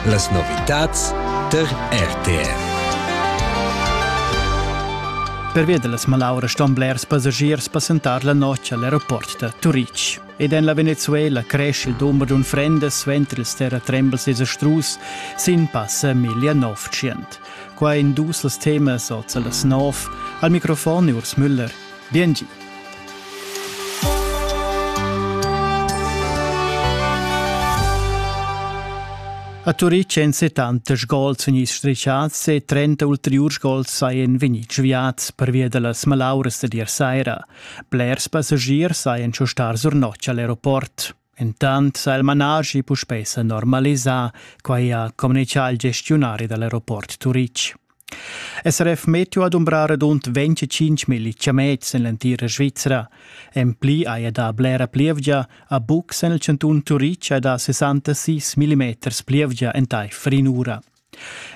Las novitads tar RTR. Pervia da las malauras ston blers passagiers passentar la notg al aeroport da Turitg. Ed en la Venezuela cresce il dumber d'unfrendas suenter ils terratrembels desastrus sin passa 1900. Qua in dus als temas oz a las 9. Al microfon Urs Müller. Bien gi. A Turitg èn 70 sgols vegnids strischads e 30 ulteriurs sgols sajan vegnids sviads pervia da las malauras da dir saira. Blers passagiers sajan star sur notg a l'aeroport. Intant s'ha il manaschi puspè s'normalisà, quai ha communitgà il gestiunari da l'aeroport Turitg. SRF Meteo ha dumbrà radund 25.000 chamets en l'entira Svizra. En pli haja dà blera plievgia. A bucs en il chantun Turitg ha dà 66 mm plievgia entaifer in'ura.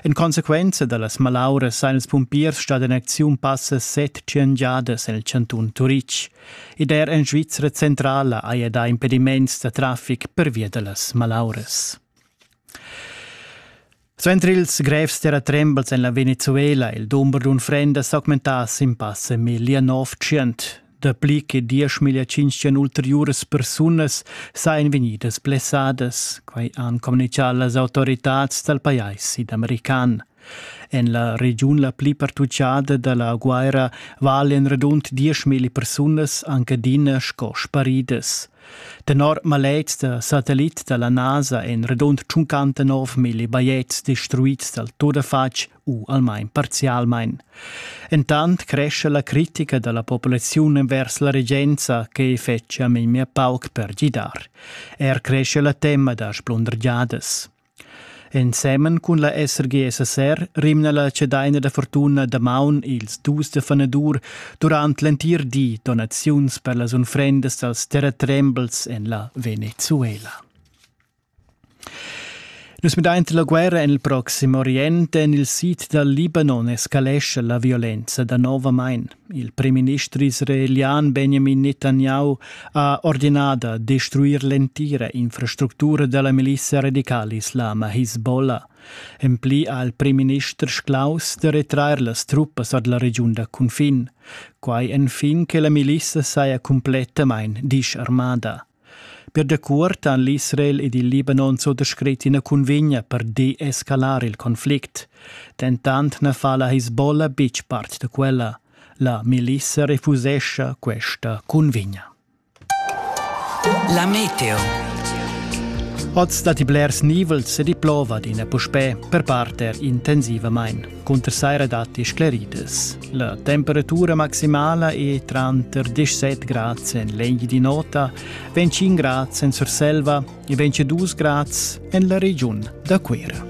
En consequenza da las malauras sajan ils pumpiers stà en acziun passa set tschient giadas el chantun Turitg. Ed er en Svizra centrala haja dà impediments da traffic pervia da las malauras. Suenter ils grevs terratrembels en la Venezuela il dumber d'unfrendas s'augmentass in passa 1900. Dapli che dieschmilja tschintschen ulteriuras persunas sajan vegnidas blessadas, quai han communitgà las autoritads dal pajais sidamerican. En la regiun la pli pertutgada da la guerra valen radund 10.000 persunas anche adina sco sparidas. Tenor maletgs da satellit da la NASA èn radund 59.000 bajetgs destruids dal tuttafatg u almain parzialmain. Entant cresce la critica da la populaziun envers la regenza che fetschia memia pauc per gidar. Er cresce la tema da splundergiadas. Ensemen cun la SRGSSR rimna la cedaina da fortuna damaun ils dus da fanadur durant l'entir di donaziuns per las unfrendas dals terratrembels en la Venezuela. Nus midain la guerra en il Proxim Orient. En il sid dal Libanon escalescha la violenza danovamain. Il primminister israelian Benjamin Netanyahu ha ordinà da destruir l'entira infrastructura da la milizia radicala islama Hezbollah. En pli ha il primminister sclaus da retrair las truppas ad la regiun da cunfin. Quai enfin che la milizia saja cumplettamain disarmada. Per dacuort han l'Israel ed il Libanon zo descret ina cunvegna per deescalar il conflict. Dentant na fa la Hezbollah betg part da quella. La milissa refusescha questa cunvegna. La meteo. Oz datti blers nivels e di plova d'ina puspè, per parter intensivamain. Cunter saira datti scleridas. La temperatura maximala è tranter 17 grads en l'egl di nota, 25 grads en Surselva e 22 grads en la regiun da Cuira.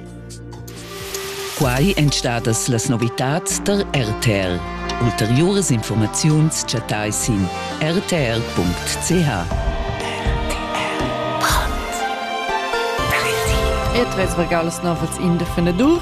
Quai èn stadas las novitads da RTL. Ulteriuras informaziuns chattai sin rtl.ch. E tres regalos novels in de Fenedur.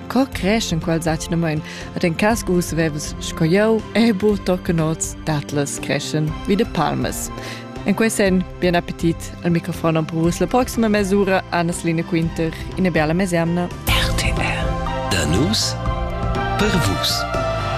Co cresch in quels atgnamain ad en cas gus vevs sco jeu e bu tochen oz datlas creschen vi de palmas. En quei sen, bien appetit al microfon per vos la proxima mesura Annas Line Quinter in bella mesemna. RTR. Da nus per vus.